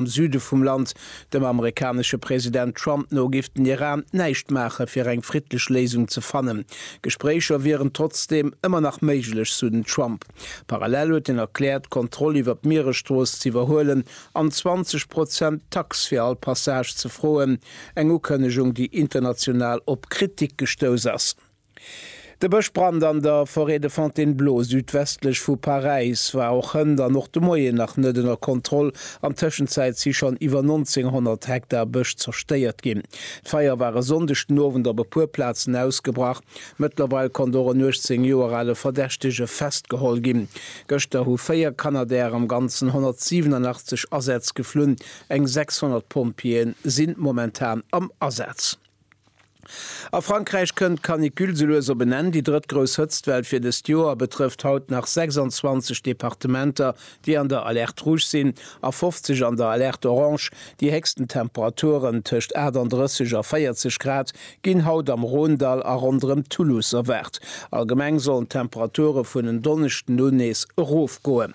Am Süde vum Land, dem amerikanesche President Trump no, géif den Iran näischt maache fir eng friddlech Léisung ze fannen. Gespréicher wieren trotzdeem ëmmer nach méiglech, sou den Trump. Parallel huet hien erkläert, d'Kontroll iwwer d'Mieresstrooss ze iwwerhuelen an 20 Prozent Tax fir all Passage ze froen, eng Ukënnegung, déi international op Kritik gestouss ass. De Bëschbrand an der Forêt de Fontainebleau, südwestlech vu Paräis, war och hënt an och de Moien nach net ënner Kontroll. An Tëschenzäit si schonn iwwer 1.900 Hektar Bësch zerstéiert ginn. D'Feier war e Sonndeg den Owend op e puer Plazen ausgebrach. Mëttlerweil konnt och en 18 Joer ale Verdächtege festgeholl ginn. Gëschter hu véier Canadairen am Ganzen 187 Asätz geflunn. Eng 600 Pompjeeë sinn momentan am Asaz. A Frankräich kënnt d'Canicule souloues op en Enn. Déi drëtt grouss Hëtztwell fir dëst Joer betrëfft haut nach 26 Departementer, déi an der Alerte rouge sinn, a 50 an der Alerte orange. Déi héchsten Temperaturen, tëscht 38 a 40 Grad, ginn haut am Rhônedall a ronderëm Toulouse erwaart. Allgemeng sollen d'Temperature vun en Donneschden un nees erofgoen.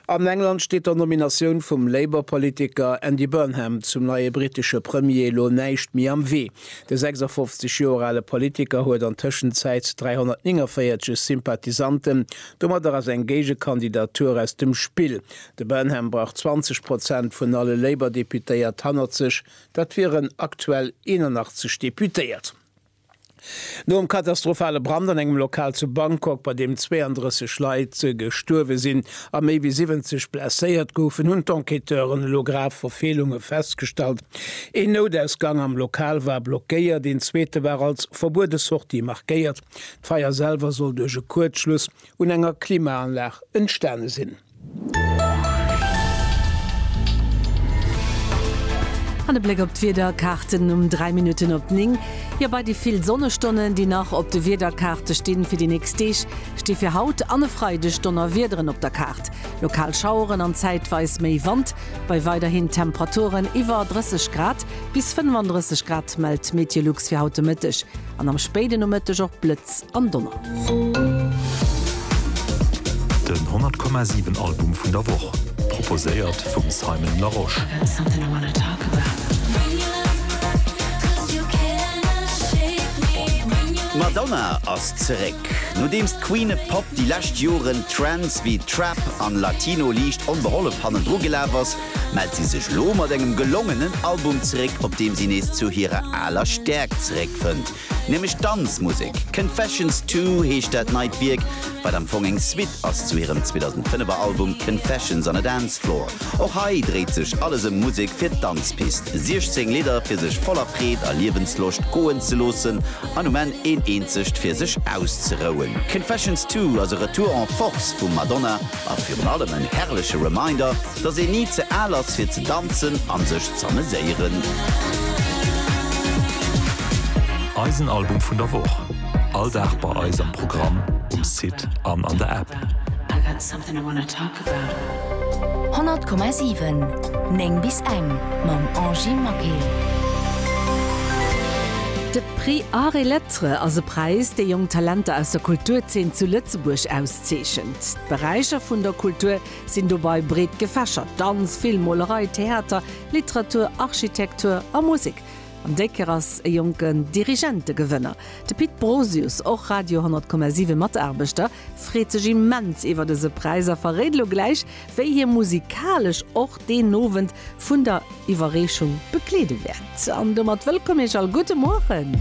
An England steet der Nominatioun vum Labour-Politiker Andy Burnham zum neie brittesche Premier elo näischt méi am Wee. De 56 Joer ale Politiker huet an Tëschenzäit 349 Sympathisanten, domadder ass eng Géigekandidatur aus dem Spill. De Burnham brauch 20 Prozent vun alle Labour-Deputéiert hannert sech, dat wieren aktuell 81 Deputéiert. Nom katastrophale Brand an engem Lokal zu Bangkok, bei deem 32 Leit gestuerwe sinn a méi wéi 70 blesséiert goufen, hunn d'Enquêteuren elo grav Verfeelunge festgestallt. Een Noutausgang am Lokal war blockéiert, een zweete war als verbuede Sortie markéiert. D'Feier selwer soll duerch e Kuerzschluss un enger Klimaanlag entstane sinn. An e Bléck op d'Wiederkaarten um 3 Minutten op 9. Jo, bei déi vill Sonnestonnen, déi nach op de Wiederkaarte stinn fir déi nächst Deeg, sti fir haut an e Freideg Donnerwiederen op der Kaart. Lokal Schaueren an zäitweis méi Wand, bei weiderhin Temperaturen iwwer 30 Grad bis 35 Grad, mellt d'Meteolux fir haut de Mëtteg. an am spéiden Nomëtteg och Blëtz an Donner. Den 100,7 Album vun der Woch, proposéiert vum Simon Larosche. D'Madonna ass zeréck. Nodeems d'Queen of Pop déi lescht Joren Trends wéi Trap an Latino liicht onbehollef hannendru gelaf ass, mellt si sech elo mat engem gelongenen Album zeréck, op deem si nees zu hirer aler Stäerkt zeréckfënnt, nämlech Danzmusek. Confessions Two heescht dat neit Wierk, wat am Fong eng Suite ass zu hirem 2005er Album Confessions on a Dance Floor. Och hei dréit sech alles ëm Musek fir d'Danzpist, 16 Lidder fir sech voller Freed a Liewensloscht goen ze loossen an um Enn een eenzegt fir sech auszerouen. Confessions Two ass e Retour en force vum Madonna a virun allem en herrleche Reminder, Dass een ni ze al ass fir ze danzen an sech z'ameséieren. Eisen Album vun der Woch, all Dag bei eis am Programm, um Site an an der App. 100,7 9 bis eng mam Angy Maquet. De Prix Arts et Lettres ass e Präis, dee jonk Talenter aus der Kulturzeen zu Lëtzebuerg auszeechent. D'Beräicher vun der Kultur, sinn dobei breet gefächert, Danz, Film, Molerei, Theater, Literatur, Architektur a Musek. An déi Kéier ass e jonken Dirigent de Gewënner. De Pit Brosius, och Radio 10,7 Mataarbechter, freet sech immens iwwert dëse Präis a verréit elo gläich, wéi hie musikalesch och deen Owend vun der Iwwerreechung begleede wäert. An domat wëllkomm Iech all, gudde Mueren!